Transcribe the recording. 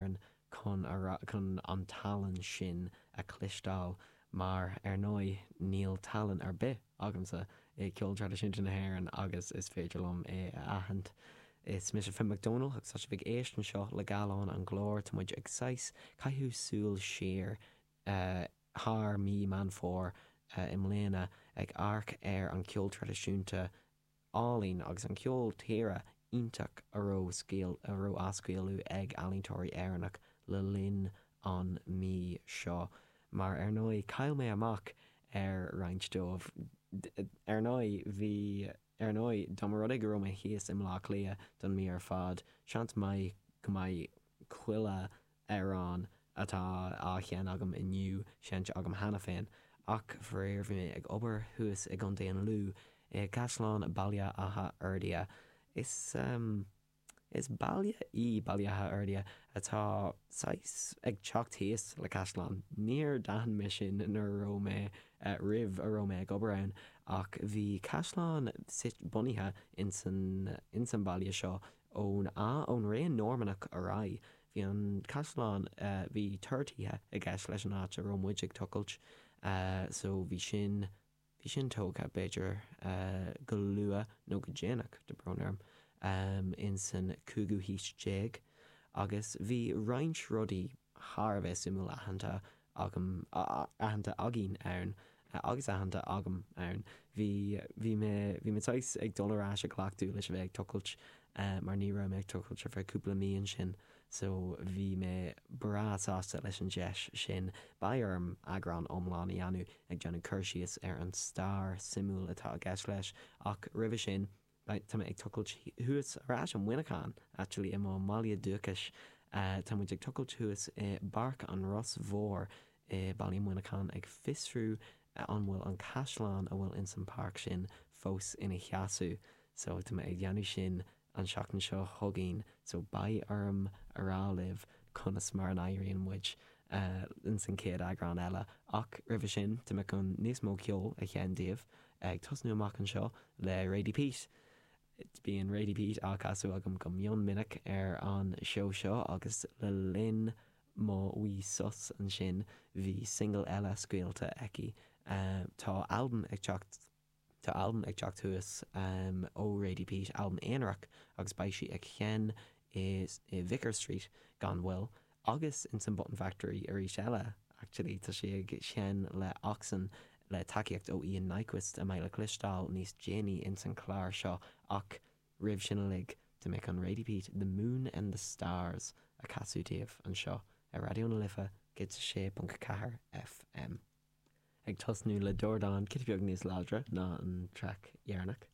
hÉireann chun an tallann sin a chloisteáil mar, ar ndóigh, níl tallann ar bith agamsa i gceol traidisiúnta na hÉireann agus is féidir liom é a aithint. Is mise Finn Mac Dónaill agus tá sibh ag éisteacht anseo le Gallán an Ghlóir. Tá muid ag saghas caitheamh súil siar thar mí Meán Fómhair i mbliana ag amharc ar an cheol traidisiúnta, ealaín agus an ceol tíre iontach a raibh á scaoileadh ag ealaíontóirí Éireannach le linn an mí seo, mar ar ndóigh chaill mé amach ar roinnt dóibh, ar ndóigh, bhí, ar ndóigh, dá mba rud é go raibh mé thíos i mBleá Cliath don mí ar fad, seans maith go mbeidh chuile amhrán atá á sheinn agam inniu seinnte agam cheana féin ach faraor bhí mé ag obair thuas i gContae an Lú i gCaisleán Bhaile Átha Fhirdhia. Is is baile í Baile Átha Fhirdhia atá saghas ag teacht i dtíos le caisleán. Níor d'aithin mé sin nuair a raibh mé roimh a raibh mé ag obair ann ach bhí caisleán suite bunaithe insan insan bhaile seo ón ón ré Normannach ar aghaidh. Bhí an caisleán, bhí túrthithe i gceist leis an áit a raibh muid ag tochailt so bhí sin, bhí sin tógtha b'fhéidir go luath nó go déanach, tá brón orm, in san cúigiú haois déag agus bhí roinnt rudaí thar a bheith suimiúil aitheanta agam, aitheanta againn ann agus aitheanta agam ann. Bhí, bhí mé, bhí mé saghas ag dul ar ais i gcleachtadh leis a bheith ag tochailt mar ní raibh mé ag tochailt ar feadh cúpla mí ansin so bhí mé breá sásta leis an deis sin. Beidh orm eagrán iomlán a dhéanamh ag déanamh cur síos ar an stair suimiúil atá i gceist leis ach roimhe sin Tá mé ag tochailt thuas ar ais i Muineachán, actually, i mo mbaile dúchais. Tá muid ag tochailt thuas i bPáirc an Ros Mhóir i Baile Muineachán ag fiosrú an bhfuil an caisleán a bhfuil ins an páirc sin fós ina sheasamh. So, tá mé ag dhéanamh sin an seachtain seo chugainn. So, beidh orm a rá libh conas mar a n-éiríonn muid ins an chéad eagrán eile. Ach, roimhe sin, tá mé chun níos mó ceol a sheinn daoibh. Ag tosnú amach anseo le Radie Peat. Bíonn Radie Peat á casadh agam go mion minic ar an seó seo agus le linn mo mhí sos ansin bhí single eile scaoilte aici. Tá albam ag teacht Tá albam ag teacht thuas ó Radie Peat, albam aonarach agus beidh sí ag sheinn i Vicar Street gan mhoill. Agus insan Button Factory arís eile, actually, tá sí ag seinm le Oxen le tacaíocht ó Ian Nyquist, a mbeidh le cloisteáil níos déanaí ins an chlár seo, ach roimh sin uilig, to make an reidpeat, The Moon and the Stars a casadh daoibh anseo ar Raidió na Life 106.4 FM. Ag tosnú le dordán giota beag níos láidre ná an traic deireanach.